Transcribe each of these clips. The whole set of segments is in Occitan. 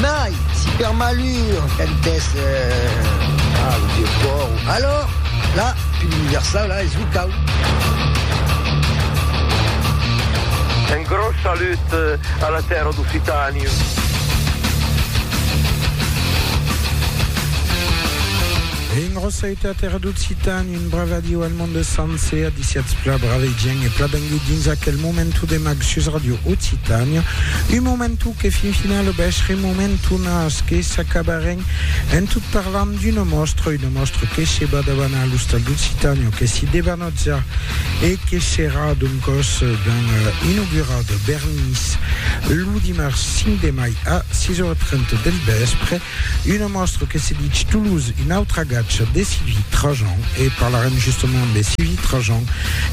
Mai, si per malur qu'ac dès pas lo Dieu fòu, alòr, la pil universau la es lo cau. Un gròs salut a la tèrra d'Occitània. Engròssaute a tèrra d'Occitània. Brave adiu al monde sencer, adiciatz pla brave gent e pla bengut dins aquel momentu de mag sus Radio Occitània. Un momentu que fin final bèsh remomentu nas que s'acabarèn en tot parlant d'una mòstra, una mòstra que se bat davant a l'Ostal d'Occitània, que se debanotza e que serà d'un còs ben inaugurada, Bernis, lo dimars 5 de mai a 6 ora 30 del vèspre. Una mòstra que se dich Toulouse, un autre agatge de Sylvie Trajan, e parlarem justement de Sylvie Trajan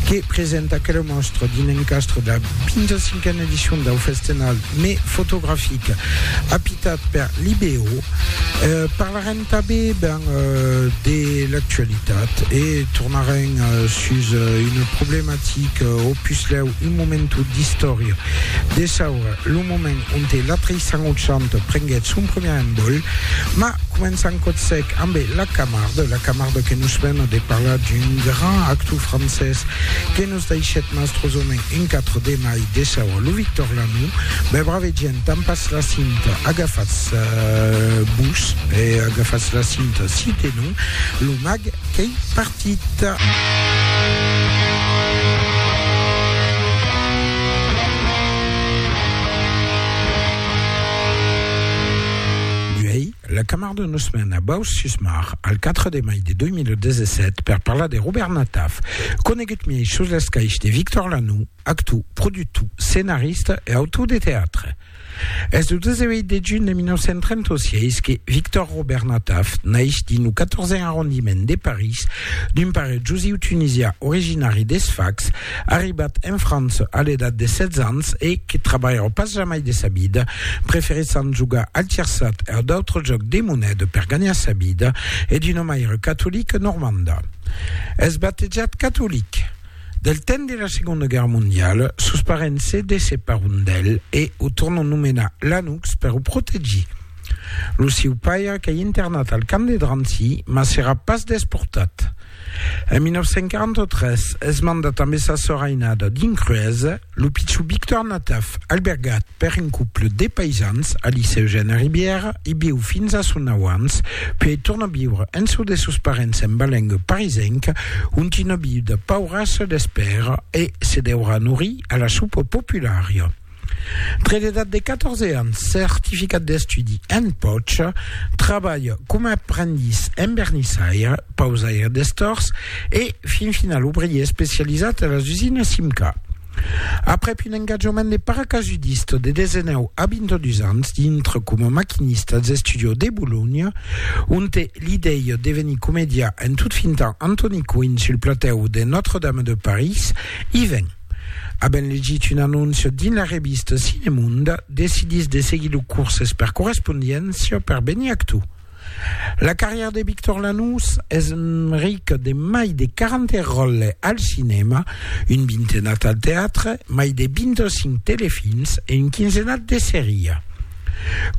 que presenta aquela mòstra dins l'encastre de la 25a edicion dau Festenal mai fotografic apitat per l'IBO. Parlarem tanben ben de l'actualitat e tornarem sus una problematica o puslèu un momentu d'istòria de saura lo moment onte l'atri sangochant prenguèt son premier envòl, ma començant còth sec ambe la Camarde, la Camarde que nos vena de parlar d'un grand actou francés que nos daishèt mastrosament un 4 de mai desaua lo Victorlanum, bè brave gent, tampatz la cinta, agafatz vos e agafatz la cinta si tenon lo mag qu'ei partit. petita. La camarda nos mèn a Baus-sus-Mar al 4 de mai de 2017 per parlar de Robert Nataf, conegut miei sus l'escaich de Victor Lanoux, actor, productor, scenarista e autor de teatre. Es lo 18 de junh de 1936 que Victor Robert Nataf naix dins lo 14 arrondiment de París d'un pare jusiu tunisià originari de Sfax, arribat en França a l'edat de 16 ans e que trabalhava pas jamai de sa vida, preferissant jogar al tirsat e a d'autres jòcs de moneda per ganhar sa vida, e d'una maire catolica normanda. Es batejat catolic. Del temps de la Segonda Guèrra Mondiala, sos parents se desseparon d'el e o tornon nomenar Lanoux per o protegir. Lo sieu paire qu'ei internat al camp de Drancy, mas serà pas desportat. En 1943 es mandat ambe sa sòr ainada dins Cruesa. Lo pichubic tornataf albergat per un couple de paisans a Liceu Gen a Ribièra, i viu fins a son nau ans, puèi torna viure en çò de sos parents en Balenga parisenca, ont una viuda paurassa l'espèra e se deurà norir a la sopa populària. Tre l'edat de 14 ans, certificat d'estudi en pòcha, trabalha coma aprendís en vernissaire, pausaire d'estors e, fin final, obrier especializat a las usinas Simca. Aprèp un engatjament de paracasudista de 19 a 22 ans dintre coma maquinista als estudios de Bolonha, onte l'idèia de venir comediar en tot fintant Antoni Coin sul platèu de Notre-Dame de París, i ven. Avent legit un anóncia dins la revista Cinemonda, decidís de seguir lo curses per correspondiéncia per venir actor. La carrièra de Victor Lanús es rica de mai de 40 ròles al cinèma, un vintenat al teatre, mai de 25 telefilms e un quinzenat de seria.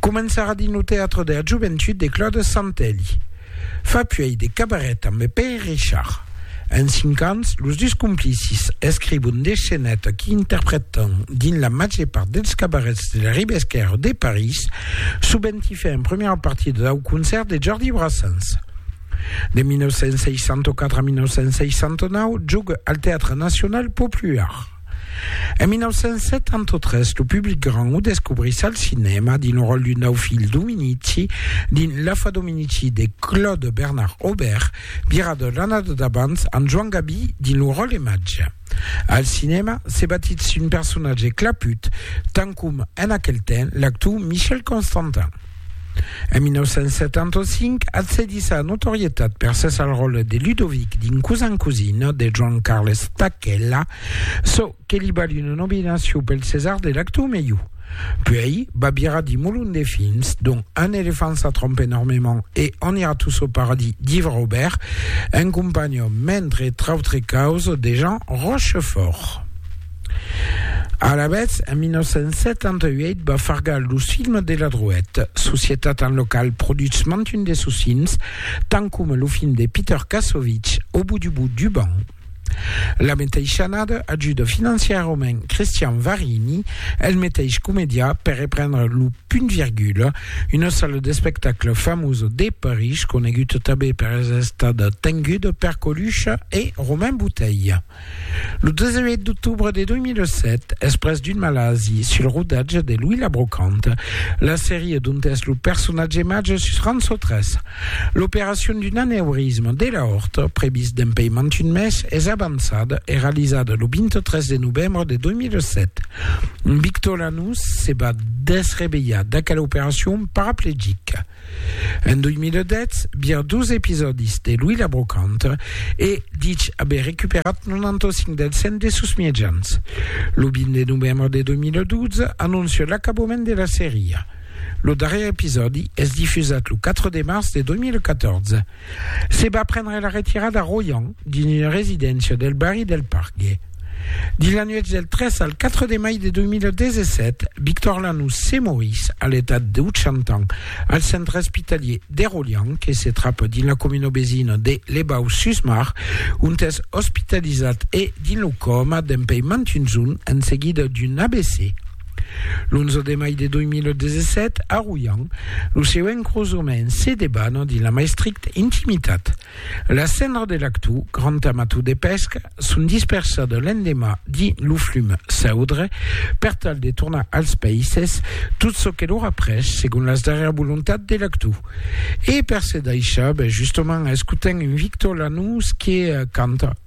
Començarà dins lo teatre de la joventut de Claude Santelli. Fa puèi de cabaret amb Pè Richard. En cinc ans, los dus complicis escrivon de sceneta que interpretan dins la màger part dels cabarets de la riba esquèrra de París, sovent i fè en primièra partida dau concèrt de Jordi Brassens. De 1964 a 1969, joga al Teatre Nacional Popular. En 1973, lo public grand o descobrís al cinèma dins lo ròl d'un dau filh Dominici dins L'afa Dominici de Claude Bernard Aubert, Vira de l'annada d'abans amb Joan Gabi dins lo ròl de Màgia. Al cinèma, se batitz un personatge claput, tant com en aquel temps l'actor Michel Constantin. En 1975, accedís a la notorietat per ses al ròl de Ludovic dins Cousin Cousine de Joan Carles Tacchella, çò que li vali una nominacion pel César de l'actor melhor. Puèi, Babira di molon de films, dont Un elefant ça trompe énormément e On ira tous au paradis d'Yves Robert, en companhion, mentre trautre causa, de Jean Rochefort. Alavetz, en 1978 va fargar los films de la Drouèt, societat en la qual produtz mantun de sos films, tant coma lo film de Peter Kassovitz, Au bout du bout du banc. La meteisha annada ajuda financiarament Christian Varini, el meteish comedià, per reprendre lo Punt Virgula, una sala d'espectacle famosa de París, coneguda tanben per èsser estada tenguda per Colucha e Romain Bouteille. Lo 18 d'octobre de 2007, exprès d'un malasi sul rodatge de Louis la Brocante, la seria dont es lo personatge màger sus Rançò 3, L'operacion d'un aneurisme de l'aorta, previst dempèi mantun mes, es avançada e realizada lo 23 de novembre de 2007. Victor Lanús se va desrevelhar d'aquela operacion paraplegica en 2010 via dos episòdis de l'uilha brocanta e dich aver recuperat 95 dels 100 de sos miejans. Lo 20 de novembre de 2012 anoncia l'acabament de la seria. Lo darrièr episòdi es difusat lo 4 de març de 2014. Se va prendre la retirada Royan dins una residéncia del barri del Pargue. Dins la nuèch del 3 al 4 de mai de 2017, Victor Lanús se morís a l'etat de 80 ans al centre espitalhier de Royan que se trapa dins la comuna vesina de Les Baux-sus-Mar ont es ospitalizat e dins lo còma dempuèi mantuns un en seguida d'un AVC. L'11 de mai de 2017, a Royan, lo seu encrosament se debana dins la mai stricta intimitat. Las cendras de l'actu grand amator de pesca son dispersada l'endemà dins lo flum Saudre per tal de tornar als païses tot çò que l'aurà pres segon las darrièras volontats de l'actu. E per se daishar, ben justament escotem un Victor Lanús que canta.